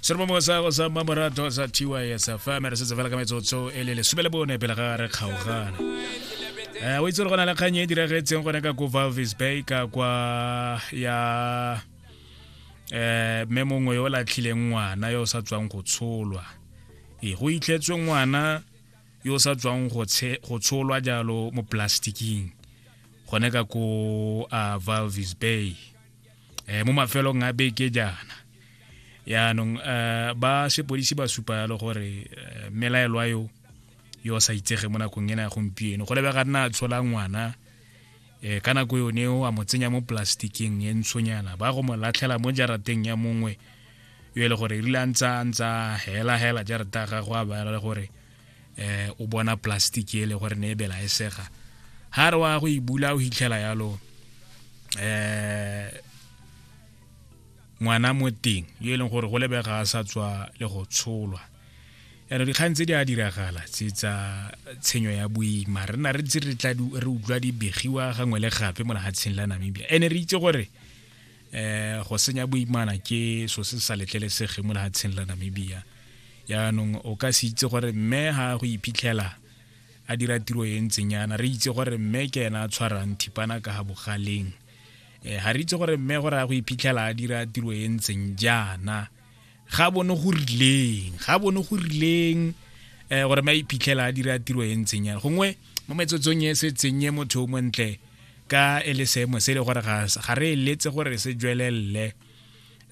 se re mo mongwe sa go sa mmamoratho sa tys fm re setse fela ka metsotso e le lesome le bone pele ga re kgaogana um o itse gore go na le kgang e diragetseng gone ka ko valvis bay ka kwa ya um mme mongwe yo o latlhileng ngwana yo o sa tswang go tsholwa e go itlhetswe ngwana yo o sa tswang go tsholwa jalo mo plastiking gone ka ko a valvis bay eh, mo mafelong a beke jaana yaanong uh, ba sepodisi ba supa yalo gore uh, melaelwa yo yo sa itsege mo nakong ena ya gompieno go lebega nna a tshola ngwana eh, ka nako yone o a mo tsenya mo plastikeng e ntshonyana ba go mo latlhela mo jarateng ya mongwe yo e le gore rile a ntsa a ntsa hela hela jarata ya gagwe a baela le gore eh o bona plastic e le gore ne e bela e sega ha re wa go e bula o hitlhela yalo eh ngwana mo teng yo e leng gore go lebega a sa tswa le go tsholwa yana dikgang tse di a diragala tse tsa tshenyo ya boima re na re ntse re utlwa di begiwa gangwe le gape mo lehatsheng la namibia ene re itse gore eh go senya boimana ke so se sa letlelesege mo lehatsheng la namibia yaanong o ka se itse gore mme ga go iphitlhela a dira tiro e ntseng yana re itse gore mme ke ena a tshwarang thipana ka ga bogaleng um ga re itse gore mme gore a go iphitlhela a dira tiro e ntseng jaana ga bone go rileng ga bone go rileng um gore ma iphitlhela a dira tiro e ntseng yana gongwe mo metsotsong e se tsenye motho o montle ka e le seemo se e le gore ga re eletse gore se jwelelele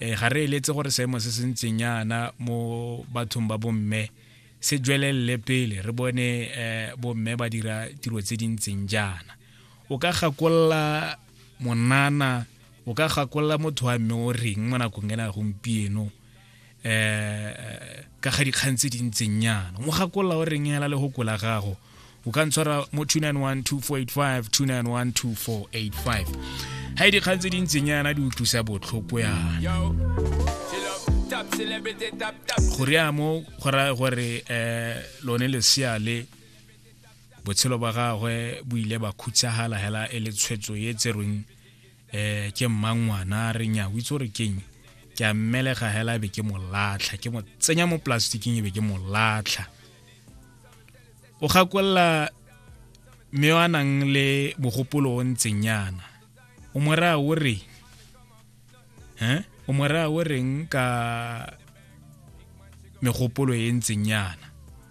um ga re eletse gore seemo se se ntseng yana mo bathong ba bomme se jwelelele pele re bone um bomme ba dira tiro tse di ntseng jaana o ka gakolola monana o ka gakolola motho wa mme o reng mo nakong ena gompieno um ka ga dikgang tse di ntseng yana mo gakolola o reng ela le go kola gago o ka ntshwara mo 2912485 2912485 ga e dikgang tse di ntseng yana di utlwisa botlhoko yana go rea mo go raya gore um lone lesea le botshelo ba gagwe bo ile ba khutsagala hela e le tshwetso e tserweng eh ke mmangwana re nya o itse gore keng ke a mmelega hela be ke molatlha ke mo tsenya mo plasticking e be ke molatlha o gakolla mme yo a nang le mogopolo o ntseng yana o mo raya o reng um o mo raya o reng ka megopolo e ntseng yana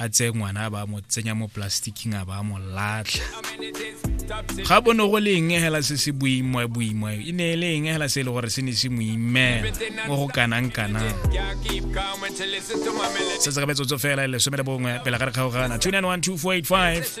a tseye ngwana a ba mo tsenya mo plasticking a ba mo latlha ga bo ne go le eng hela se se boima boima e ne e le eng hela se e le gore se ne se mo imela mo go kanang kanang se se ka metsotso fela e lesome le bongwe pele ga re kgaogana 291 2485